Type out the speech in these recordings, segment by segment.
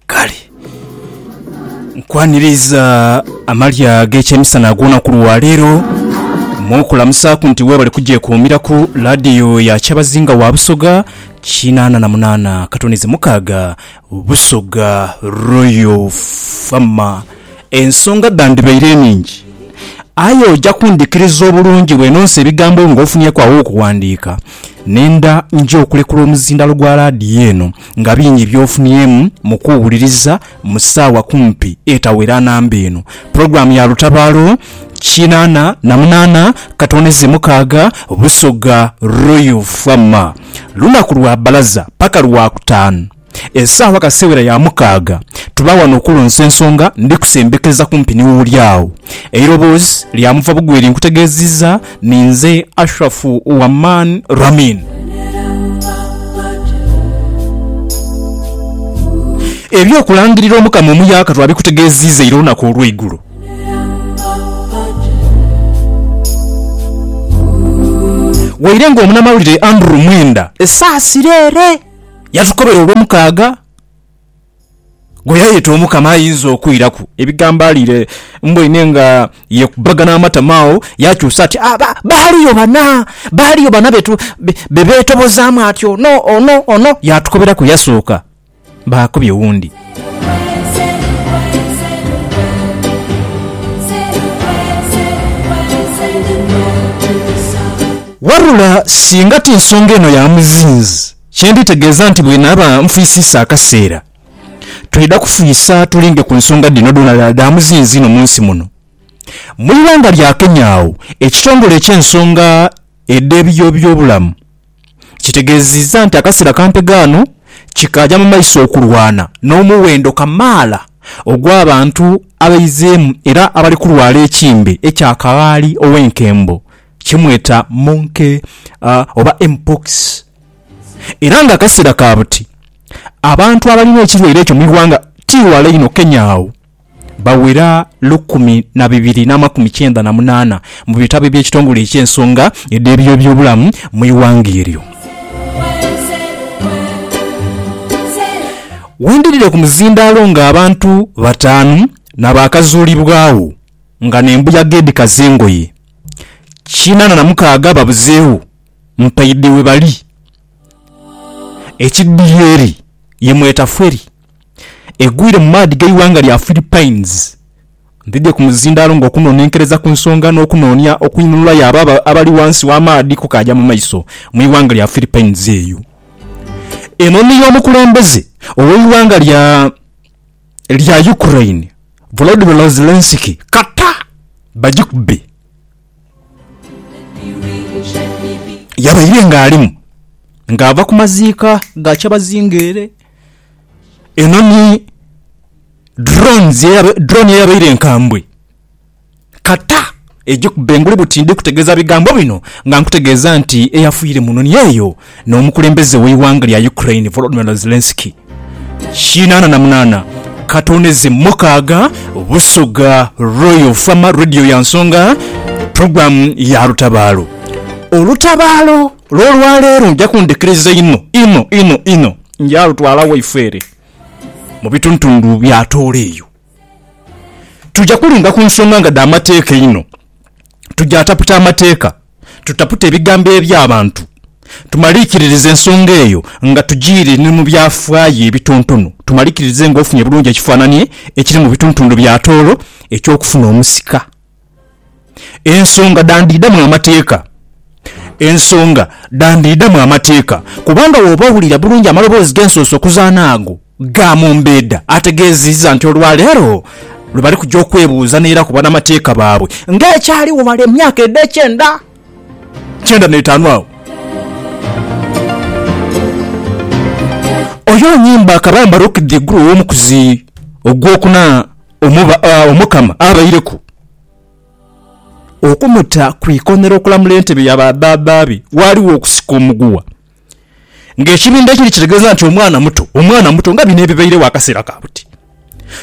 kale nkwaniriza amalya ag'ekyemisana ag'olunaku lwa leero mu kulamusaaku nti weebale kugyekuumiraku laadiyo ya kyabazinga wa busoga kinaana na munaana katonizi mukaaga busoga royal fama ensonga dhandibaire eningi aye ojja kundikiriza obulungi bwenonsa ebigambo ebyo ng'ofunyeku awokuwandiika nenda nja okulekula omuzindaalo gwa laadiyo eno Nga bingi by'ofunyeemu mu kuwuliriza mu ssaawa kumpi etawera namba eno pulogulaamu ya Lutabaalo kinaana na munaana katoneze mukaaga Busoga Royal Fwama lunaku lwa bbalaza paka Lwakutaanu essaawa kasewera ya mukaaga tuba wano okulonsa ensonga ndi kusembekeza kumpi ni w'oli awo eiroboozi lya Muvabugweri nkutegeezizza Ninze Ashraf wa Man Ramin. Eby'okulangirira Omukama omuyaaka twabikutegeeziiza ira olunaku olw'eigulo. Waire ng'omunamawulire Andrew Mwenda esaasira ere yatukobera Olwomukaaga. gwe yayeeta Omukama ayinza okwiraku. Ebigambo aliire mboine nga yekubagana amatama agho yaakyusa ati, Ah, ba, baaliyo bana, baaliyo bana be tu, be, be beetobozaamu ati, Ono, ono, ono. Yaatukoberaku yasooka, Baakubye wundi. Wabula singa ti nsonga eno ya muzinzi. Kye nditegeeza nti bwe naaba nfwisiisa akaseera, twidha kufwisa tulinde ku nsonga dhino dhoonadhoona dha muzinzi inho mu nsi muno. Mu ighanga lya Kenya agho, ekitongole eky'ensonga edh'ebiyobyobulamu kitegeezizza nti akaseera kampe ghano kikaaja mu maiso okulwana n'omuwendo kamaala ogw'abantu abaizeemu era abali kulwala ekimbe ekya kaghaali ow'enkembo. kimweta monke oba mpox era nga akasera ka buti abantu abalina ekirwaire ekyo mwighanga ti wala inho Kenya agho bawera lukumi nabibiri namakumi kyenda namunana mubitabo ebyekitongole ekyensonga edhebyobyobulamu mwighanga eryo. Wendhidhire kumuzindhalo nga abantu batanu nabakazulibwagho nga nembuyaga edhikaza engoye kinana na mukaaga babuzeegho mpaidhe webali. Ekidhie eri ye mweta feri egwire mu maadhi g'eighanga lya Philippines. Ndhidhie ku muzindaalo ng'okunonenkereza ku nsonga n'okunoonia okwinhululayo abo abali ghansi w'amaadhi kukaaja mu maiso mu ighanga lya Philippines eyo. Eno ni y'omukulembeze ow'eighanga lya. lya Ukraine Volodymyr Zelensky kata bagikube. Yabaire ng'alimu ng'ava ku maziika ga kyabazinga ere eno ni drone eyabaire enkambwe. Kata eije ku bengule buti ndi kutegeeza bigambo bino nga nkutegeeza nti eyafiire mu noni eyo n'omukulembeze w'eighanga lya Ukraine Volodymyr Zelenskyy kinaana na munaana katone ze mukaaga Busoga Royal Farmer Radio ya Nsonga pulogulaamu ya Lutabaalo. Olutabaalo lw'olwaleero nja kundhikiriza inho inho inho inho nja lutwala waifeere mu bitundutundu bya Tooro eyo. Tuja kulinga ku nsonga nga dha mateeka einho. Tujaataputa amateeka, tutapute ebigambo eby'abantu, tumaliikiririze ensonga eyo nga tujiire ni mu byafaayo ebitontono, tumaliikiririze ng'ofunye bulungi ekifaananie ekiri mu bitundutundu bya tooro eky'okufuna omusika. Ensonga dhandidhamu amateeka. Ensonga dhandidhamu amateeka kubanga bw'oba owulira bulungi amaloboozi g'ensuusa okuzaana ago ga Mumbedha ategeezizza nti olwaleero lwe bali kugya okwebuuza n'era ku banamateeka baabwe nga ekyaligho male emyaka edh'ekyenda kyenda n'etaanu agho. Oyoo Nyimba Kabamba Rukidhi Iguru ow'omukuzi ogw'okuna. Omukama abaireku okumuta ku ikonhero okulamula entebe ya badhaadha be, ghaligho okusika omuguwa ng'ekibindho ekiri kitegeeza nti omwana muto, omwana muto, nga bino ebibairegho akaseera ka buti.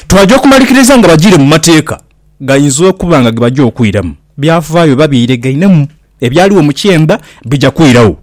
Twaja okumalikiriza nga bajiire mu mateeka gainza okuba nga ge baja okwiramu byafaayo oba byeyiregainemu ebyaligho mu kyenda bija kwiragho.